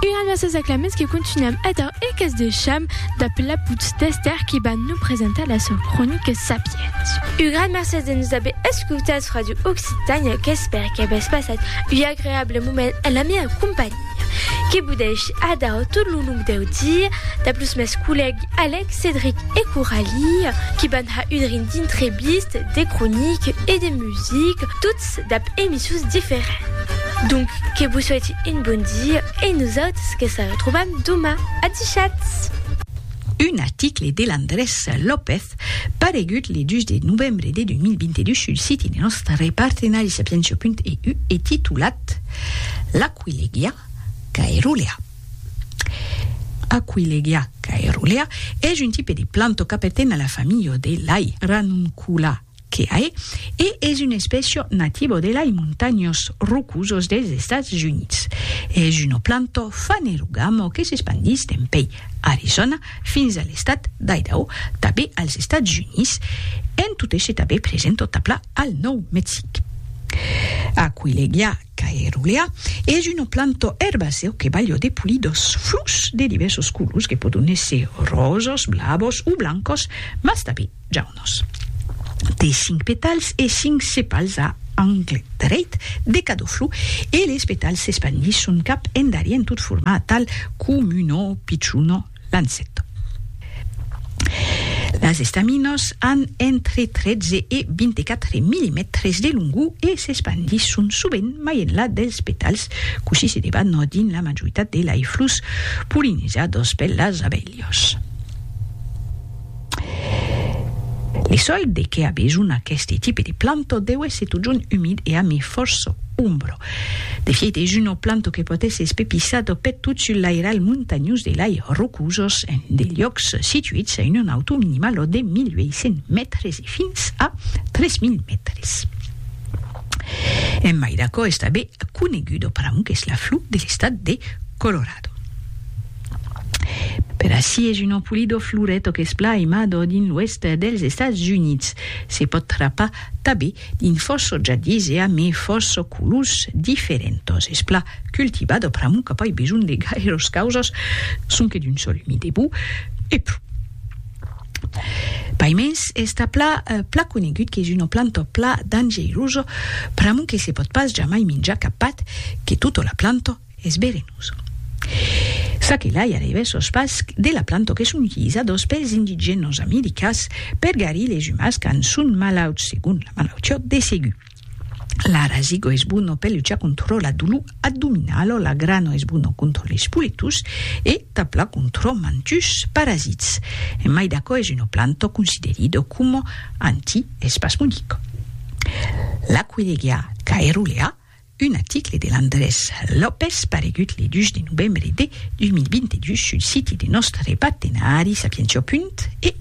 Una de ses aclaments que continuam ator e qu'es de cham dab la put d'Èster qui va nos presentar la sò cronica Sapiens. Un gran mercés de nos aver escautats Radio Occitània qu'espère qu'avètz passat un agreable moment en la mia companhia. Que vos dèishi ador tot lo long deu dia dab los mès collègues Alèc, Cedric e Coralie qui van har un rin d'intrevistes, de croniques e de music, tots dab emissions diferents. Donc que vos soiti un bon dia e nosautres que se retrobam doma. Adishatz! Un article de Landrés López paregut le 2 de novembre de 2022 sul siti de nòstre partenari Sapientia.eu e titulat L'aquilegia caerulea Aquilegia caerulea es un tipe de planta qu'aperten a la familha de lei, Ranuncula. que ae e es un especio nativo de lai montanhos rocosos dels Estats Units. Es uno planto fanerogamo que s'espandís dempèi Arizona fins a l'estat d'Idaho, tabé als Estats Units, en tot esse tabé present tot a pla al Nòu Mexic. Aquileglia Caerulea es una planta erbacèu que balha de polidors flors de divèrsos colors que pòdon èsser ròsas, blavas o blancas, mas tanben jaunas. Té cinc petals e cinc sepals a angle dreit de cada flor e les petals s'espandisson cap endarièr tot formar tal com'una pichona Lancet. Las estaminas an entre 13 e 24 millimètres de longor e s'espandisson sovent mai enlà dels petals, cossí se debat dins la majoritat de lei flors polinizadas per las abelhas. Li sòl de qué a besonh aqueste tipe de planto deu èsser totjorn umid e amir fòrça ombra. De fièit es una planto que pòt èsser espepissada peth tot sul lairalh montanhós de lai rocosas en de liòcs situits a una nautor minimala de 1.800 mètres e fins a 3.000 mètres. En mai d'aquò es tanben coneguda pr'amor qu'es la flor de l'estat de Colorado. Per ací es un empolidor floret o qu'es plan aimador dins l'oèst dels Estats Units. Se pòt trapar tabé dins fòrça jardins e amé fòrça colors diferentos. Es plan cultivat o pr'amor qu'a pas besonh de gaires causas, sonque d'un sòl umid e bou, e pro. Paimens es tà plan plan conegut qu'es una planta plan dangeirosa pr'amor que se pòt pas jamai minjar cap pat que tota la planta. Es verenós. Ça que lai arribes sos pas de la planto que s'unhisa dos pels indigenos americas per garir les umas quand son malauts segon la malautiot de Segu. L'arazigo es bono per luchar contro la dolor addominalo la grano es bono contro les poletos e tabla contro mantus parasits. En mai d'aquò es una planto considerido como anti-espasmodico. La Querègia caerulea Un article de Landrés López paregut le 2 de novembre de 2022 sul siti de nòstre partenari Sapientió. EU.